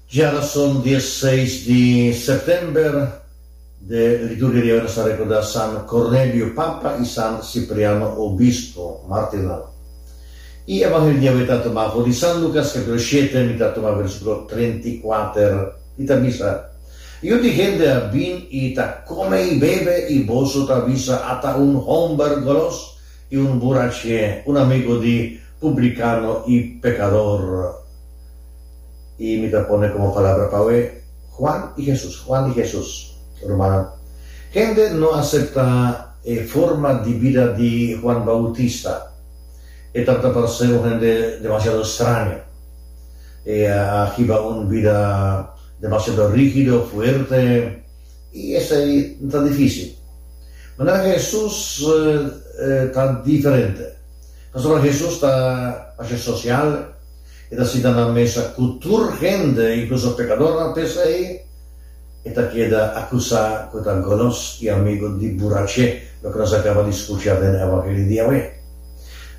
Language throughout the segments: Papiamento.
Djarazón di e seis di sèptèmber de Liturgia di awe nos ta rekordá San Cornelio, Papa, i San Cipriano, Obispo, Martinal. I Evangelio di awe ta tumá for di San Lucas capítulo shete, mi ta tuma versículo trenta i kuater, i ta bisa, E yu di hende a bin i ta kome i bebe, i boso ta bisa, Ata un hòmber golos! I un burach'é, un amigo di publicano i pecador. I mi ta pone como palabra pa awé, Juan i Jesus, Juan i Jesus. Rumannan, hende no acepta e forma di bida di Juan Bautista. E tabata parce un hende demasiado straño. E a hiba un bida demasiado rigido, fuerte. I esei no ta difísil. Manera ku Hesus ta diferente. Pasobra Hesus ta pasha sosial, e ta sinta na mesa ku tur hende, inkluso pekadornan. P'esei e ta keda akusá ku ta golos i amigu di burache, loke nos a kaba di skucha den e Evangelio di awe.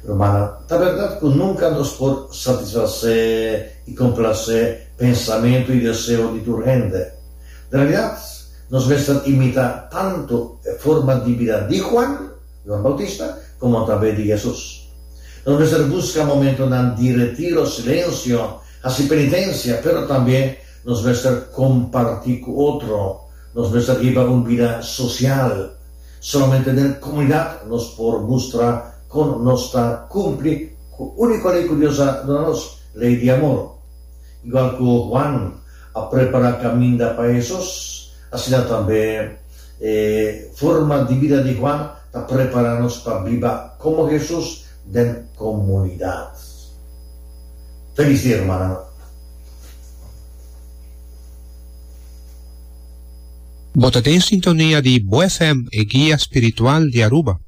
Rumannan, ta bèrdat ku nunka nos por satisfasé i komplasé pensamentu i deseo di tur hende. Realidat, nos mester imita tantu e forma di bida di Juan, Juan Bautista, komo tambe di Hesus. Nos mester buska momentunan di retiro, silensio, hasi penitensia, pero tambe nos mester kompartí ku otro. Nos mester hiba un bida sosial. Solamente den komunidat nos por mustra kon nos ta kumpli ku úniko lei ku Dios a duna nos, lei di amor. Igual ku Juan. A prepara caminda pa Hesus, asina tambe e forma di bida di Juan ta prepara nos pa biba como Hesus den comunidad. Feliz Dia Hermana. Bo ta den sintonia di Bo FM, e guia spiritual di Aruba.